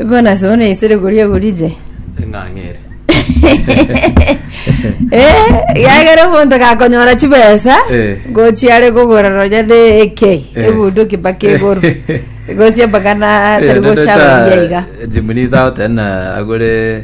Bono sobo naisire koria gorije. eng'ang'ere Eh, yagera omonto gakonyora chibesa Eh. gochiare kogora ronya ne ekei Eh. ebuduki mpaka igoro gosia mpaka na tari gocha roria iga jimunisa otena agore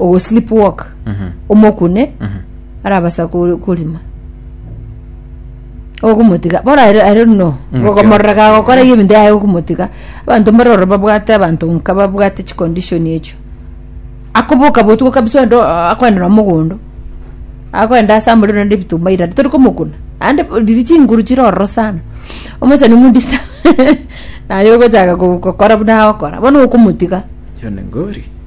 ogo sleep walk omokune arabasa ko- korima ogomotiga bono aye aye no gogomorora gagokora iga ebinto yaye okomotiga abanto mbare ororo babwate abanto nka babwate chicondition echio akoboka botugo kabisa onde oo akoenda na mogondo akoenda ase amorero naende ebitumba ira tori komokuna aande bo riria chinguru chire ororo sana omosani omonto sa naye ogochaka go- gokora buna agokora bono okomotiga John Ngori.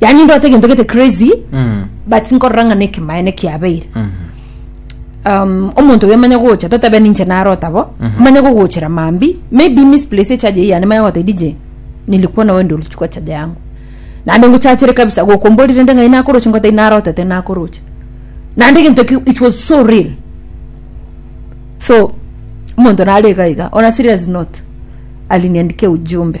yani ndwate egento gete crazy Mm. but nkorora ng'a nekemaene kiabeire Mhm. um, omonto oyo manya gocha totabe ninche narota bo Mhm. manya gogochera mambi maybe misplace echaje yane manya gote dj nilikuwa nawe ndio ulichukua chaja yangu nande ngochachere kabisa gokomborire nde ngai nakoroche ngote narotete nakoroche nande gento ki it was so real so omonto nare iga iga on a serious note aliniandikia ujumbe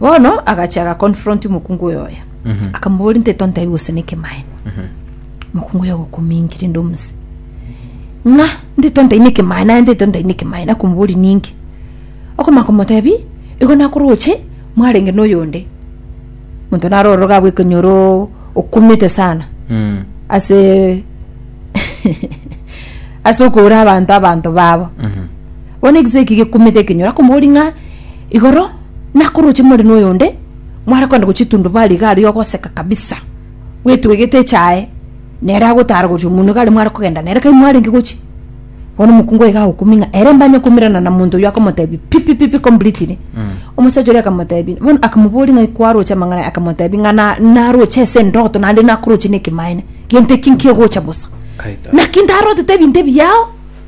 bono agacha aga confront mokungu oyo oya akamobori nte tontabi gose nekemaene mokungu oyo agokomingira inde omuse ng'a nte tontai nekemaene aye nte tontai nekemaene akomobori ninki okomaka omotebi igo nakoroche mwarenge noyonde monto naro ororo abwe ekonyoro okumete sana Mm. ase ase okora abanto abanto babo bono ekise eki gekumete ekenyoro akomori ng'a Igoro nakoroche more noyonde mware kogenda gochitundubaria iga aria ogoseka kabisa bwetwegete echae nere agotara gochia omonwa iga aria mware kogenda nere kai mwarenge gochia bono omokungu iga agokumi ng'a ere mbanye komirana na monto oyio akomotebi pipi pipi completely omosacha oria akamotebi bono akamoboria ng'ai kwaroche amang'ana akamotebi ng'a na- naroche ase endoto naende nakoroche na ekemaene gento eki nkigocha bosa Kaito. naki ndarotete ebinto ebi yao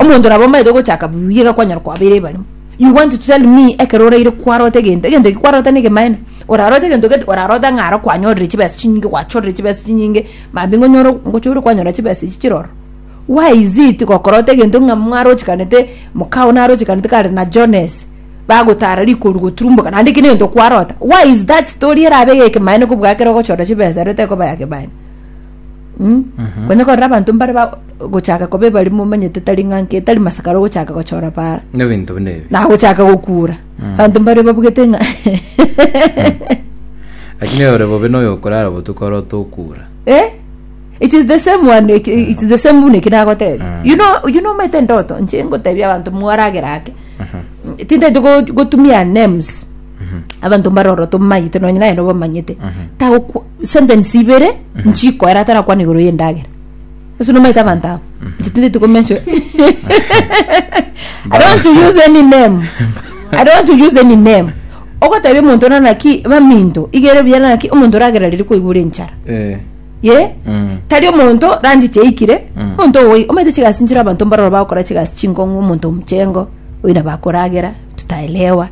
Omonto nabo omanyete ogochaka buya iga kwanyora kwabeire ebarimo. You want to tell me ekero oraire kwarota egento, egento eki kwarota na egemaene? Orarota egento gete orarota ng'a aro kwanyorire chibesa chinyinge gwachorire chibesa chinyinge maambia iga onyore ngochore kwanyora chibesa echi chire ororo. Why is it gokorota egento ng'a mwarochekanete mokao narochekanete kare na Jones bagotara rikoru goturumboka naende eki negento kwarota. Why is that story erabe ya ekemaene kobua ekero ogochora chibesa ero tekoba ya kemaene? Mm? Konya korora abanto mbare ba gochaka kobe bari momanyete tari ng'anke tari masakaro gochaka gochora bara. nebinto buna ebi Na gochaka gokura. Abanto mbare babugete ng'a lakini ore bobe noyo okorara obotuko oro tokura Eh? It is the same one, it, it is the same buna ekina agotebe. You know, you know mete ndoto, nche ngotebi abanto mwaragera ake. Tindete go- gotumia names. Abanto mbaroro tomayete nonye naye nobamanyete. Tago sentence ibere nchikoera atarakwana igoro y'endagera ase nomaete abanto abo chitindeti komention i don't want to use any name i don't want to use any name ogotebia omonto nana naki baminto igere buya nana naki omonto oragera riria kwaigure enchara Eh, ye mm, tari omonto ranji chiaikire Mm. omonto owe omanyete chigasi nchire abanto mbaroro bagokora chigasi chinkong'u omonto omuchengo oina bakoragera tutaelewa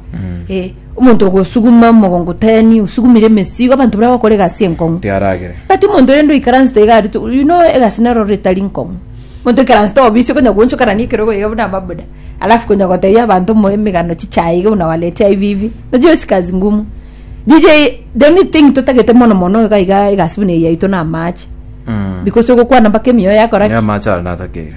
eh Omonto ogosuguma omogongo teni, osugumire emesigo, abanto baria bagokora egasi enkong'u. Tiaragere. But omonto rende oikaransete iga aria, to- you know egasi nero rore etari nkong'u. Omonto oikaransete obisi okonya goonchoka nani ekerogo iga buna amabuda, alafu konya gotebia abanto omo emegano chichae iga buna waletia hivi hivi. Unajua hiyo si kazi ngumu. DJ, the only thing totagete mono mono iga iga egasi buna eye yaito na amaache. Because ogokwana mpaka emioyo yakora ki? Niamache aria natakeire.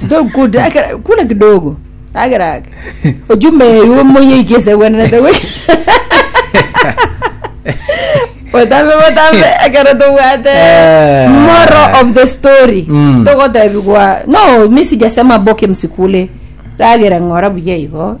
Sitokukuta ekera kula kidogo. Agera ake. Ojume yo moye ikese bwana te we. Botambe botambe ekero tobwate Eh. moral of the story. Mm. Togotebigwa no misi jasema boke msikule. Ragera ngora buya igo.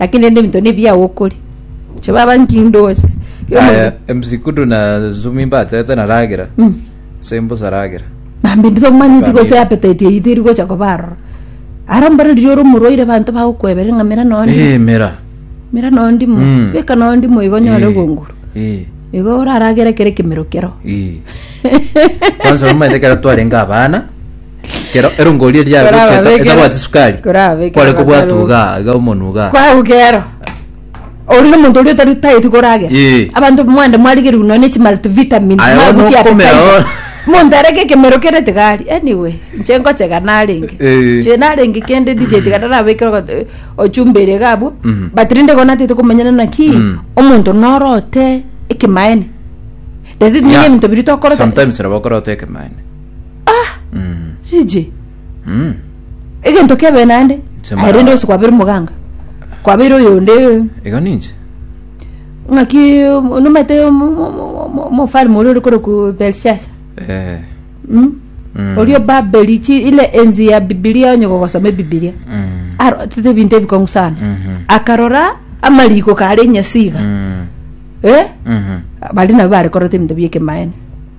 lakini rende ebinto nebiya gokoria inche baba nkindoche Aya, MC Kudu na Zumi mbatete na ragera. Mm. Sembusa ragera. mambe ndito manyiti Family. gose appetite yayi teri gocha kobarora ara mbare riria ore omorwaire banto bagokwebera ng'amera nondi Eh, mera. mera nondi mo Mm. beka nondi mo igo nyore Eh, gonguru eh, igo oraragere kere kemero kero eh. Kwanza omanyete kera twarenga abana Kero erongori eria Kora yagocheta babekera. etabwati sukari. Kora babekera Kware kobwatu abataruga. iga iga omonu iga. kwagukero ori nomonto oria otari tayeti koragera Eh. abanto mwande mwarigerigwe nonya chi multivitamins Aya, maya bono gochia okomera, appetizer. oh. monto arege ekemero kere tigari anyway inche ngochega narenge Eh. inche narenge kende dj tiga narabekere ogo- eh, ochumba ere iga abwo Mhm. but rende igo natete komenyana naki Mm. omonto norote ekemaene does it mean Yeah. ebinto biri tokorote Sometimes nabo okorota ekemaene. Ah, Mm, rije. mm. Egento kebe nande. Chemara- Aye rende ose kwabeire omoganga. Kwabeire oyonde. igo ninche Ng'aki nomete omofari mori ore kore ku Belshaza. Eh, Mm. mm, Orio Babeli chi ile enzi ya Biblia onye gogosome Biblia. mm, Aro tete bintu ebikong'u sana. mhm, Akarora amariko kare nyasiga. mm, Eh? mhm. Bali nabo bare korota ebintu biekemaene.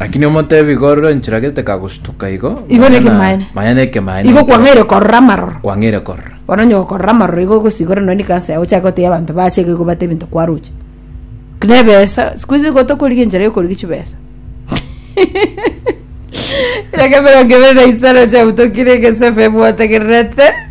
Lakini omotebi gorora enchera gete kagosutuka igo. Igo na ekemaene. Maya na ekemaene. Igo kwang'aire korora amaroro. Kwang'aire korora. Bono onye okorora amaroro igo ogosigora nonye kansa yao ochake gotebia abanto bache igo gobate ebinto kwaroche. Buna ebesa, siku hizi igo tokorigia enchera yokorigia chibesa. Kera kebere ongebere na isaro chebutokire egesobe bwotegererete.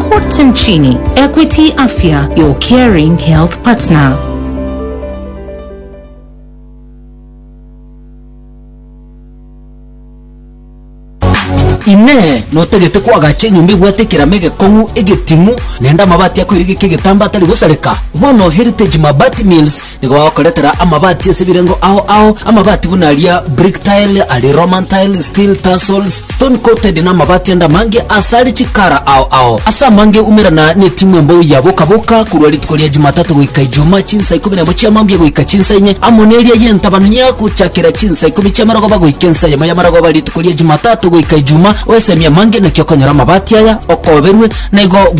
Kote nchini, Equity Afya, your caring health partner. Inee! Notagete koagacha enyomba ebwate ekerama egekong'u, egetimo, naende amabati akoiregeka egetambaa atari gosareka? Bono Heritage Mabati Mills Nigo bagokoretera amabati ase ebirengo ao ao, amabati buna aria brick tile, aria Roman tile, steel tassels, stone coated, na amabati ande amange ase are chikara ao ao. Ase amange umerana netimwa embou ya boka boka korwa rituko ria Jumatatu goika Ijumaa chinsa ikomi nemo chia mambia goika chinsa inye, amo neria y'entabanu yago gochakera chinsa ikomi chia marogoba goika ensa eyemo ya marogoba rituko ria Jumatatu goika Ijumaa, oesemie amange naki okonyora amabati aya okoberwe, na igo bwekonyora.